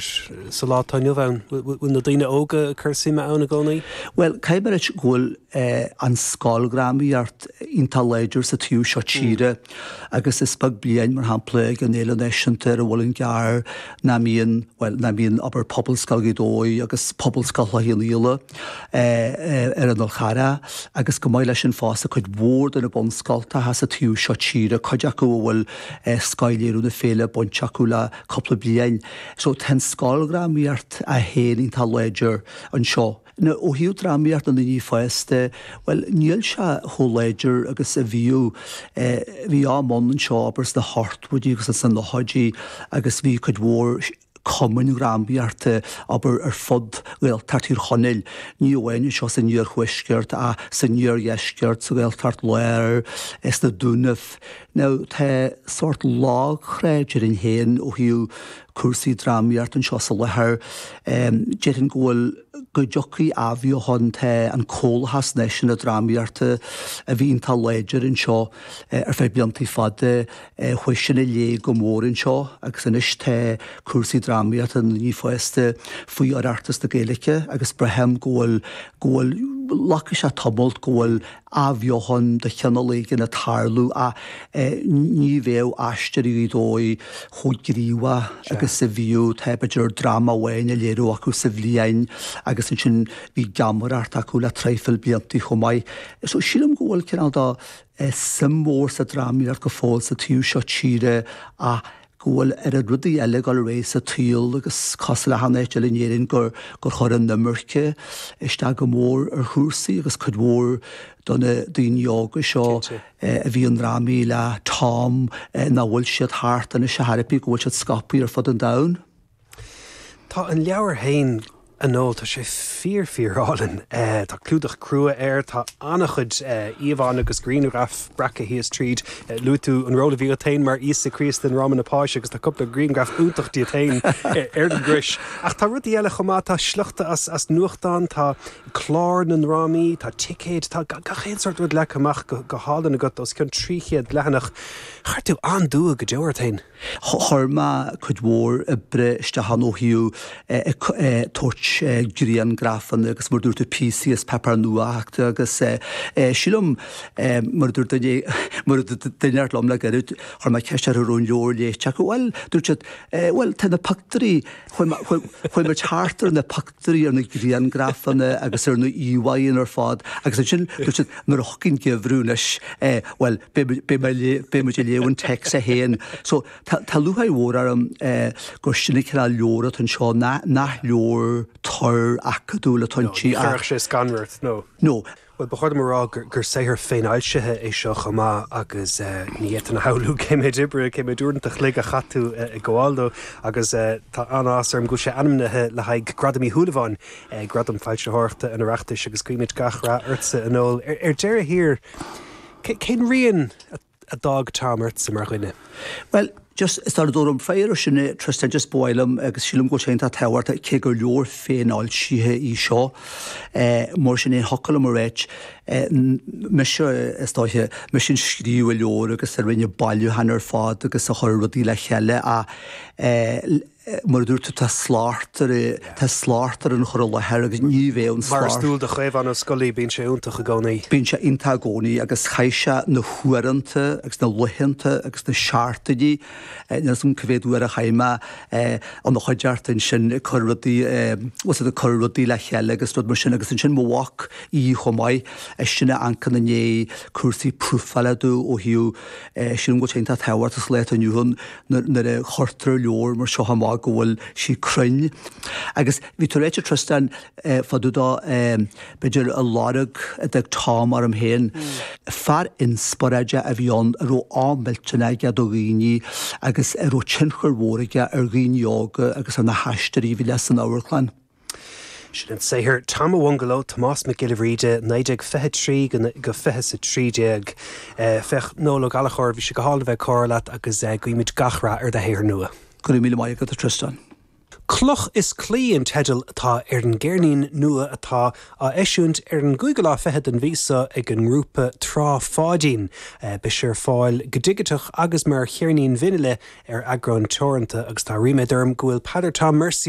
sa lá atá inniu ann? Bhfuil na daoine óga ag cur suime ann i gcónaí? Bhuel, caithfidh mé a rá go bhfuil an scoildrámaíocht iontach láidir sa taobh seo tíre agus is beag bliain, mar shampla, ag an Fhéile Náisiúnta ar an Mhuileann gCearr nach mbíonn, bhuel, nach mbíonn obair Phobalscoil Ghaoth Dobhair agus Phobalscoil Chloich Cheannfhaola ar an Fhál Charrach agus go maith leis sin fosta cuid mhór de na bunscoilteacha sa taobh seo tíre, cuid acu a bhfuil scothléiriú na féile bainte acu le cúpla bliain. So tá an scoildrámaíocht í féin iontach láidir anseo. Now ó thaobh drámaíocht na ndaoine fásta, bhuel níl sé chomh láidir agus a bhíodh. Bhí am ann anseo abair sna hochtóidí agus sna nóchaidí agus bhí cuid mhór cumainn drámaíochta abair ar fud Ghaeltacht Thír Chonaill, ní amháin anseo san iarthuaisceart ach san iardheisceart, sa Ghaeltacht Láir, sna Dúnaibh. nó tá sórt lag trá déarfainn féin ó thaobh cúrsaí drámaíochta anseo sa láthair. Déarfainn go bhfuil, go dtiocfaidh athbheochan, tá an Comhlachas Náisiúnta Drámaíochta a bhí iontach láidir anseo ar feadh blianta fada, chuaigh sin i léig go mór anseo agus anois tá cúrsaí drámaíochta na ndaoine fásta faoi Oireachtas na Gaeilge agus braithim go bhfuil, go bhfuil, glacfaidh sé tamall go bhfuil athbheochan de chineál éigin ag tarlú ach ní bheadh Aisteoirí Ghaoth Dobhair chomh gníomhach agus a bhíodh. Tá b'fhéidir dráma amháin á léiriú acu sa bhliain agus ansin bhí geamaireacht acu le traidhfil blianta chomh maith. So sílim go bhfuil cineál de suim mhór sa drámaíocht go fóill sa taobh seo tíre ach go bhfuil oiread rudaí eile ag dul réidh sa tsaol agus cosúil le achan áit eile in Éirinn gur chuir an imirce isteach go mór ar chúrsaí agus cuid mhór de na daoine óga seo a bhí i ndrámaí le Tom, nach bhfuil siad thart anseo thairbhe go bhfuil siad scaipthe ar fud an domhain. Tá an leabhar féin, a Noel, tá sé fíor fíorálainn. Tá clúdach crua air, tá an-chuid íomhánna agus grianghraif breactha thíos tríd. Luaigh tú an ról a bhí agat féin mar Íosa Críost i ndráma na Páise agus tá cúpla grianghraf iontach díot féin air, ar an gcrois. Ach tá rudaí eile chomh maith, tá sliochta as nuachtáin, tá cláir na ndrámaí, tá ticéid, tá gach aon sórt rud leagtha amach go hálainn agat, os cionn 300 leathanach. Chuir tú an-dua go deo ort féin. Chuir mé cuid mhór oibre isteach ann ó thaobh ag tabhairt grianghrafanna agus mar a dúirt tú píosaí as paipéar nuachta agus sílim mar a dúirt duine mar a dúirt duine eile liom le gairid chuir mé ceist orthu raibh an leabhar léite acu bhuel dúirt siad bhuel tá na pictiúirí chuaigh mé thart ar na díriú ar na grianghrafanna agus ar na íomhánna ar fad agus ansin dúirt siad nuair a thiocfaidh an geimhreadh anois bhuel beidh muid ag léamh an téacs é féin. So tá lúcháir mhór orm gur sin an cineál leabhar atá anseo nach leabhar tur acadúil atá inti ach. Ní chuirfeadh sé scanradh ort nó? No. Bhuel, ba chóir dom a rá gur saothar féinfhoilsithe é seo chomh maith agus ní fhéadfainn a shamhlú cé mhéad oibre, cé mhéad uaireanta an chloig a chaith tú ag gabháil dó agus tá an-áthas orm go bhfuil sé ainmnithe le haghaidh Gradam Uí Shúilleabháin, Gradam Foilsitheoireachta an Oireachtais agus guímid gach rath ortsa a Noel. Ar deireadh thiar, cén rian a. a d'fhág Tom ortsa mar dhuine. Bhuel, just sula dtabharfaidh mé freagra air sin, a, Tristan, just ba mhaith liom agus sílim go bhfuil sé iontach tábhachtach, cé gur leabhar féinfhoilsithe í seo, mar sin féin, thiocfadh liom a ráit, mise, is dóiche, mise a scríobh an leabhar agus a rinne an bailiúchán ar fad agus a chuir rudaí le chéile, ach mar a dúirt tú, tá slacht ar, tá slacht ar an chur i láthair agus ní bheadh an slacht. Mar is dual do Chaomhán Ó Scolaí, bíonn sé iontach i gcónaí. Bíonn sé iontach i gcónaí agus chaith sé na huaireanta agus na laethanta agus na seachtainí, níl 'fhios a'm cé mhéad uair a chaith mé ina chuideachta ansin ag cur rudaí, what's it, ag cur rudaí le chéile agus rud mar sin agus ansin mo mhac, Aodh, chomh maith, eisean a amharcann i ndiaidh cúrsaí profála domh ó thaobh, sin rud iontach tábhachtach sa lá atá inniu ann. nuair a chuirtear leabhar mar seo amach go bhfuil sí cruinn agus bhí tú ag ráit, a Tristan, fá dtaobh de b'fhéidir an lorg a d'fhág Tom orm féin. Fear inspioráide a bhí ann a raibh am millteanach aige do dhaoine agus a raibh tionchar mhór aige ar dhaoine óga agus ar na haisteoirí a bhí leis san amharclann. Sin an saothar Tom Owungalo, Tomás Mac Giolla Bhríde, 1923 go 2013. Féach Noel Ó Gallchóir, Bhí sé go hálainn a bheith ag comhrá leat agus guímid gach rath ar do shaothar nua. Go raibh míle maith agat, a Tristan. Cloch is Claí an teideal atá ar an gceirnín nua atá á eisiúint ar an gcúigiú lá fichead den mhí seo ag an ngrúpa Trá Pháidín. Beidh sé ar fáil go digiteach agus mar cheirnín vinile ar eagrán teoranta agus tá ríméad orm go bhfuil Peadar Tom Mercier,